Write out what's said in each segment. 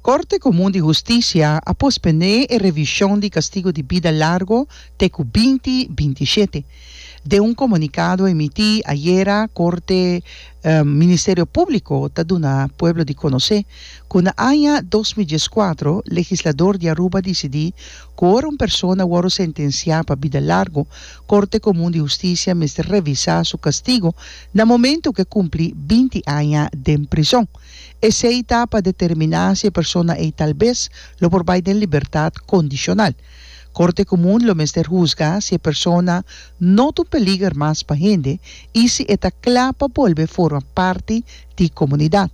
Korte Komun di Hustisia a pospendé e revishon di kastigo di bida largo te ku binti binti shete. Den un komunikado emití ayera Korte Ministerio Públiko ta duna pueblo di konosé ku na aña dos mil dies kuatro legislador di Aruba disidí ku ora un persona wòrdu sentensiá pa bida largo Korte Komun di Hustisia mester revisá su kastigo na momentu ku e kumpli binti aña den prizòn. Esei ta pa determiná si e persona ei talbes lo por bai den libertat kondishonal. Korte Komun lo mester husga si e persona no ta un peliger mas pa hende i si e ta kla pa bolbe forma parti di komunidat.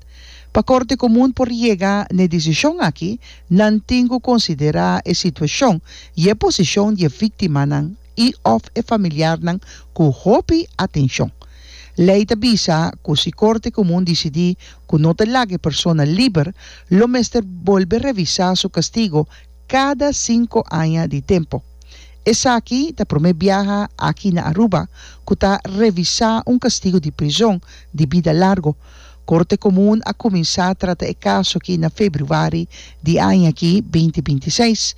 Pa Korte Komun por yega na e disishon akí, nan tin ku konsiderá e situashon i e posishon di e víktimanan. i òf e familiarnan ku hopi atenshon. Lei ta bisa ku si Korte Komun disidí ku no ta laga e persona liber, lo mester bolbe revisá su kastigo kada sinku aña di tempu. Esaki ta promé biaha aki na Aruba ku ta revisá un kastigo di prizon di bida largu. Korte Komun a kuminsá trata e kaso aki na februari di añaki veinti binti seis.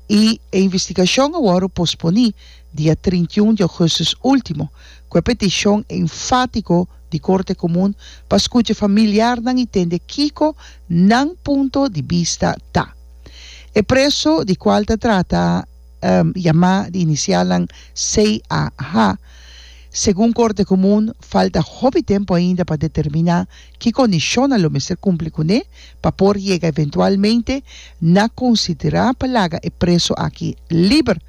I e investigashon a wòrdu posponí dia trinta i un di ougùstus último, ku e petishon enfátiko di Korte Komun pa skucha familiarnan i tende kiko nan punto di bista ta. E preso di kual ta trata yamá di inisialnan CAH, segun Korte Komun falta hopi tempu ainda pa determiná Ki kondishonnan lo mester kumpli kuné pa por yega eventualmente na konsiderá pa laga e preso aki liber?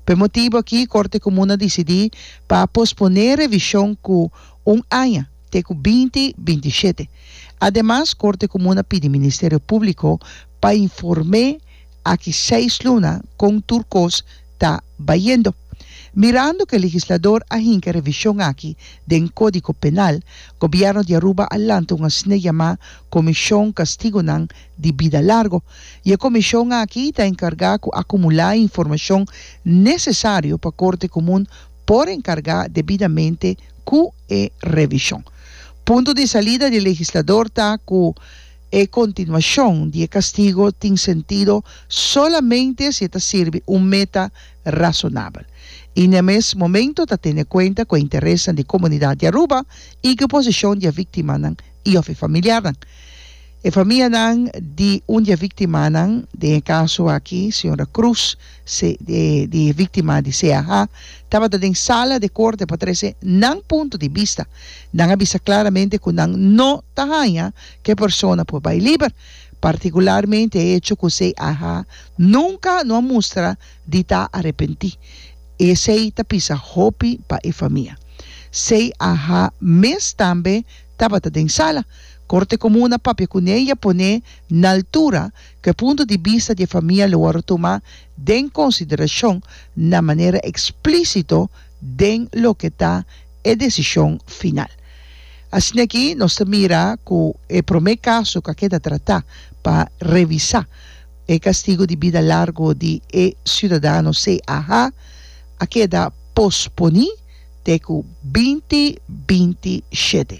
Ku e motibu aki Korte Komun a disidí pa posponé revishon ku un aña, te ku binti binti i shete. Ademas, Korte Komun a pidi Ministerio Públiko pa inform'é aki seis luna kon tur kos ta bayendo. Mirando ku e legislador a hinka e revishon aki den Kódigo Penal, Gobièrnu di Aruba a lanta un asina yamá Komishon Kastigunan di Bida Largu, i e komishon aki ta enkargá ku akumulá e informashon nesesario pa Korte Komun por enkargá debidamente ku e revishon. Punto di salida di e legislador ta ku. E kontinuashon di e kastigo tin sentido solamente si e ta sirbi un meta rasonabel i na e mes momento ta tene kuenta ku e interesnan di komunidat di Aruba i ku e posishon di e viktimanan i òf e familiarnan. E famianan di un di e viktimanan, den e kaso aki señora Cruz, se di e viktima di CAH, tabata den sala di e korte pa trese nan punto di bista. Nan a bisa klaramente ku nan no ta haña Ke persona por bai liber, partikularmente e hecho ku esei aha nunka no a mustra di ta arepentí. Esei ta pisa hopi pa e famia. Sei aha mes tambe tabata den sala. Korte Komun a papia kuné i a poné na altura ku e punto di bista di e famia lo wòrdu tumá den konsiderashon na manera eksplísito, den loke ta e desishon final. Asin'aki nos ta mira ku e promé kaso ku a keda tratá pa revisá e kastigu di bida largu di e siudadano CAH a keda posponí te ku binti binti shete.